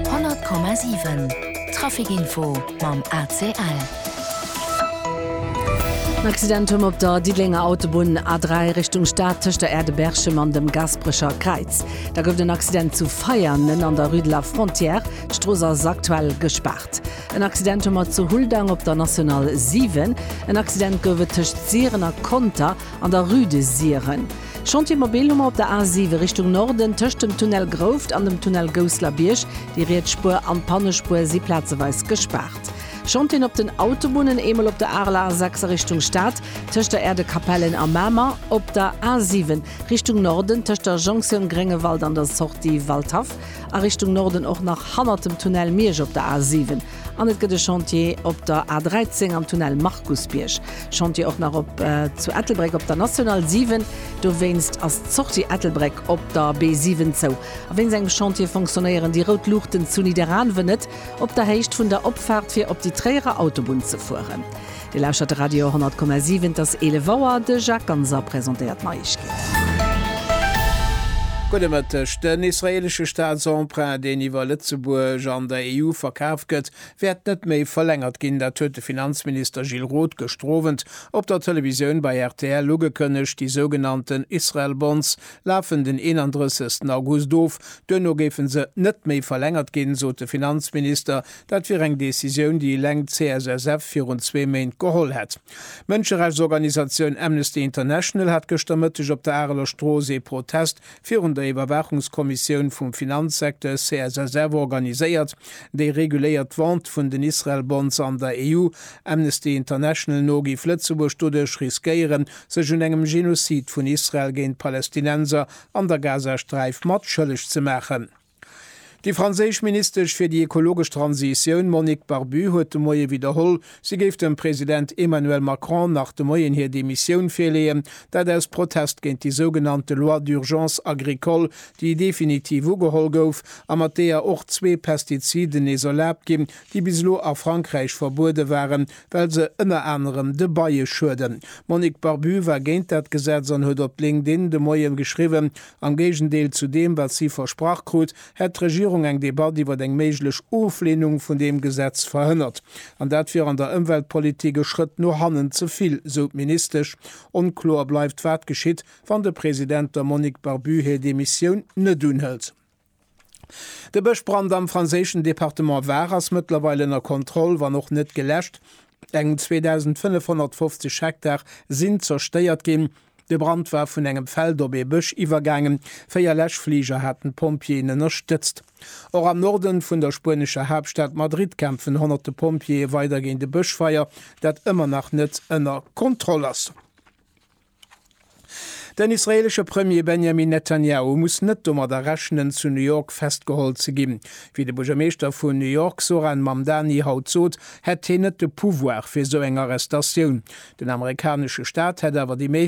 100,7 Trafic Info mam ACL. En Accident huet mer op der Diddelenger Autobunn A3 Richtung Stad tëscht der Aire de Berchem an dem Gasperecher Kräiz. Da gouf et en Accident zu Veianen an der Rue de la Frontière. D'Strooss ass aktuell gespaart. En Accident hu mer zu Huldang op der National 7. En Accident gouf et tëscht Siren a Conter An der Rue de Siren. Chantier Mobil hu mer op der A7 Richtung Norden, tëscht dem Tunnel Grouft an dem Tunnel Gousslerbierg. Déi riets Spuer an d'Pannespuer si plazeweis gespaart. Chantien op den Autobunnen, eemol op der Arler A6 a Richtung Stad, tëscht der Aire de Capellen a Mamer, op der A7 Richtung Norden, tëscht der Jonction Gréngewald an der Sortie Waldhaff a Richtung Norden och nach hannert dem Tunnel Miersch op der A7. An et gëtt e Chantier op der A 13 am Tunnel Markusbierg. Chantier och nach op zu Ettelbréck op der National 7. Dowéinst ass d'Sortie Ettelbréck op der B 7 zou. A wéinst engem Chantier fonctionnéieren déi rout Luuchten zu Nidderaanwen net op der Héicht vun der Opfaart fir op déi Tréierer Autobunn ze fueren. Dir lauschtert de Radio 100,7, et ass 11 Auer. De Jacques Ganser presentéiert d'Neiegkeeten. Gudde Mëtteg. Den israeelesche Staatsemprunt, deen iwwer Lëtzebuerg an der EU verkaf gëtt, wäert net méi verlängert ginn. Dat huet de Finanzminister Gilles Roth gëschter Owend op der Televisioun bei rtl ugekënnegt. Déi sougenannten Israel Bonds lafen den 31 August of. Duerno géife se net méi verlängert ginn, sot de Finanzminister. Dat wier eng Decisioun, déi eleng d'CSSF virun zwee Méint geholl hätt. D'Mënscherechtsorganisatioun Amnesty International hat gëschter Mëtteg op der Areler Strooss ee Protest virun der Iwwerwaachungskommissioun vum Finanzsecteur CSSF organiséiert, déi reguléiert d'Vente vun den Israel-Bonds an der EU. Amnesty International no géif Lëtzebuerg doduerch riskéieren, sech un engem Genozid vun Israel géint d'Palästinenser an der Gazasträif mat schëlleg ze maachen. Déi franséisch Ministesch fir déi ekologesch Transitioun Monique Barbu huet de Moie widderholl, si géif dem President Emmanuel Macron nach de Moien hir Demissioun virleeën, dat aus Protest géint déi sougenannte Loi d'urgence agricole, déi definitiv ugeholl gouf a mat deeër och zwee Pestiziden nees erlaabt ginn, déi bis elo a Frankräich verbuede waren, well se ënner anerem de Beie schueden. D'Monique Barbu war géint dat Gesetz an huet op LinkedIn de Moie geschriwwen, Am Géigendeel zu deem, wat si versprach krut, hätt d'Regierung eng Debatt iwwer eng méiglech Oflehnung vun deem Gesetz verhënnert. An dat wier an der Ëmweltpolitik e Schrëtt no hannen ze vill, sou d'Ministesch. Onkloer bleift, wat geschitt, wann de President, der Monique Barbu, hir Demissioun net unhëlt. De Bëschbrand am franséischen Departement Var ass mëttlerweil ënner Kontroll, wann och net geläscht. Eng 2.550 Hektar sinn zerstéiert ginn. De Brand war vun engem Feld op ee Bësch iwwergaangen. Véier Läschfliger haten d'Pompjeeën ënnerstëtzt. Och am Norde vun der spuenescher Haaptstad Madrid kämpfen honnerte Pompjeeë weider géint e Bëschfeier, dat ëmmer nach net ënner Kontroll ass. Den israeelesche Premier Benjamin Netanyahu muss net domadder rechnen, zu New York festgeholl ze ginn. Wéi de Buergermeeschter vun New York Zohran Mamdani haut sot, hätt hien net de Pouvoir fir esou eng Arrestatioun. Den amerikanesche Staat hätt awer déi.